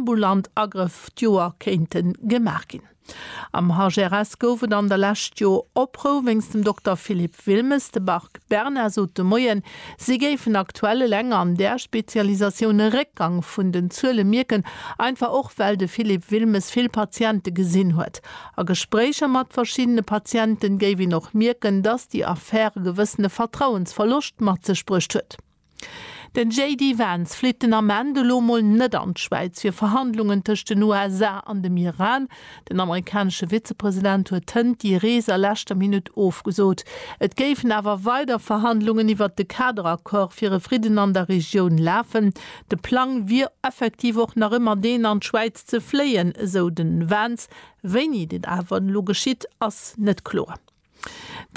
ambulant Agrëff d'Joer kéinte gemaach ginn. Am HRS gouf et an der Lescht jo Oprou wéinst dem Dokter Philippe Wilmes. De Bark Bernard sot de Moien, si géifen aktuell eleng an där Spezialisatioun e Réckgang vun den Zuele mierken, einfach och well de Philippe Wilmes vill Patiente gesinn huet. A Gespréicher mat verschiddene Patiente géif een och mierken, datt déi Affär e gewëssene Vertrauensverloscht mat sech bruecht huet. Den JD Vance flitt den Ament elo mol net an d'Schwäiz fir Verhandlungen tëscht den USA an dem Iran. Den amerikanesche Vizepresident huet hënt déi Rees a leschter Minutt ofgesot. Et géifen awer weider Verhandlungen iwwert de Kaderaccord fir e Fridden an der Regioun lafen. De Plang wier effektiv och nach ëmmer deen an d'Schwäiz ze fléien, esou den Vance. Wéini dat awer elo geschitt, ass net kloer.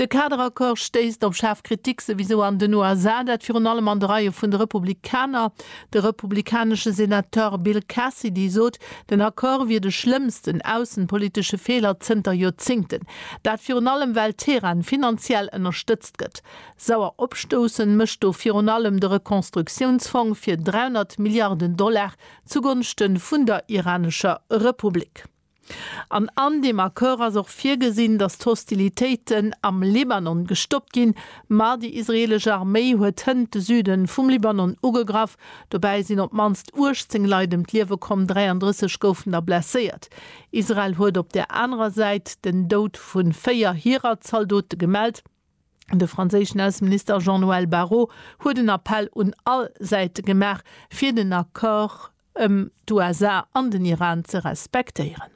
De Kaderaccord stéisst op schaarf Kritik, souwisou an den USA, dat virun allem an de Reie vun de Republikaner. De republikanesche Senateur Bill Cassidy sot, den Accord wier de schlëmmsten aussenpolitesche Feeler zënter Joerzéngten. Dat virun allem, well Teheran finanziell ënnerstëtzt gëtt. Sauer opstoussen mécht do virun allem de Rekonstruktiounsfong fir 300 Milliarden Dollar zugonschte vun der iranescher Republik. An an deem Accord ass och virgesinn, datt d'Hostilitéiten am Libanon gestoppt ginn. Ma déi israeelesch Arméi huet hënt de Süde vum Libanon ugegraff. Dobäi sinn op d'mannst 18 Leit ëm d'Liewe komm, 33 goufen der blesséiert. Israel huet op där anerer Säit den Doud vu véier hirer Zaldote gemellt. De franséischen Ausseminister Jean-Noël Barrot huet en Appell un all Säite gemaach, fir den Accord ëm d'USA an den Iran ze respektéieren.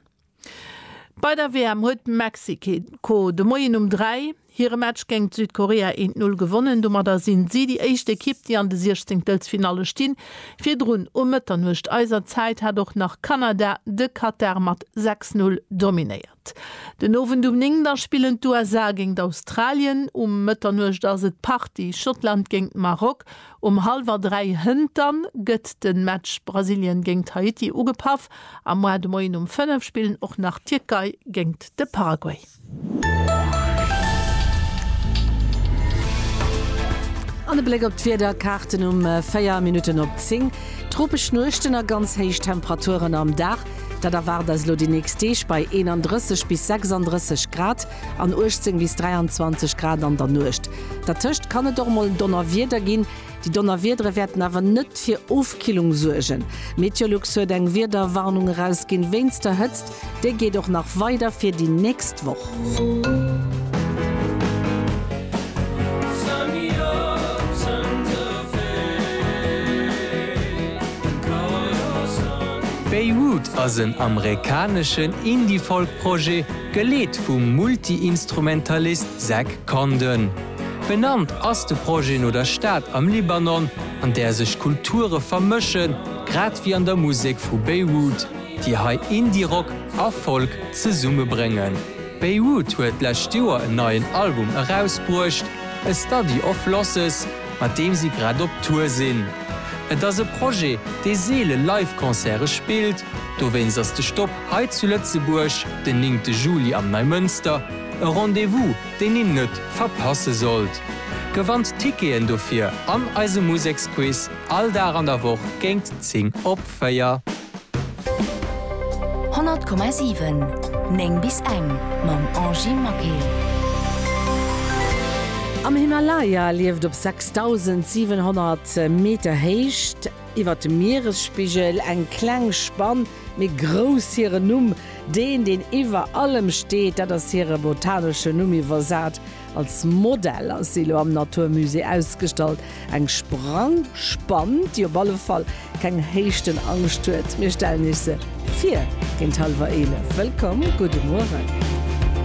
Bei der WM huet Mexiko de Moien um 3 hire Match géingt Südkorea eent Null gewonnen. Domadder sinn si déi éischt Ekipp, déi an de Siechzenktelfinalle stinn. Virdrun um Mëtternuecht eiser Zäit hat och nach Kanada de Katar mat 6 Null dominéiert. Den Owend um 9 da spillen d'USA géingt Australien, um Mëtternuecht ass et Party, Schottland géingt Maroc, um hallwer 3 hënter gëtt de Match Brasilien géingt Haiti ugepaff a moar de Moien um 5 spillen och nach d'Tierkei géingt de Paraguay. An e Bléck op d'Wiederkaarten um 4 Minutten op 10, Tropesch Nuechten a ganz héich Temperaturen am Dag. Dat erwaart eis elo déi nächst Deeg bei 31 bis 36 Grad an 18 bis 23 Grad an der Nuecht. Dertëscht kann et och mol Donnerwieder ginn. Déi Donnerwiedere wäerten awer net fir Ofkillung suergen. Meteolux huet eng Wiederwarnung erausginn wéinst der Hëtzt. Déi geet och nach weider fir déi nächst Woch. Beirut ass en amerikaneschen Indie-Folk-Projet, geleet vum Multi-Instrumentalist Zach Condon. Benannt ass de Projet no der Stad am Libanon, an där sech Kulture vermëschen, grad wéi an der Musek vu Beirut. déi hei Indie-Rock a Folk zesumme bréngen. Beirut huet d'lescht Joer en neien Album erausbruecht, A Study of Losses, mat deem si grad op Tour sinn. Et ass e Projet, dee seele Live-Concerte spillt, dowéinst ass de Stop hei zu Lëtzebuerg den néngte Juli am Neimënster e Rendez-vous, deen een net verpasse sollt. Gewannt d'Ticketen dofir an eisem Museksquiz all Dag an der Woch géint 10 op. Feier. 100,7, 9 bis eng, Mam Angie Maquet. Am Himalaya lieft op 6700 Meter Héicht iwwert dem Mieresspigel eng kleng Spann, mee grouss. Hiren Numm, deen, deen iwwer allem steet, dat ass hire botanesche Numm, iwwersat Als Modell ass si elo am Natur Musée ausgestallt. Eng Sprangspann, déi op alle Fall keng Héichtenangscht huet. Mir stellen Iech se vir géint hallwer 11. Wëllkomm, gudde Mueren.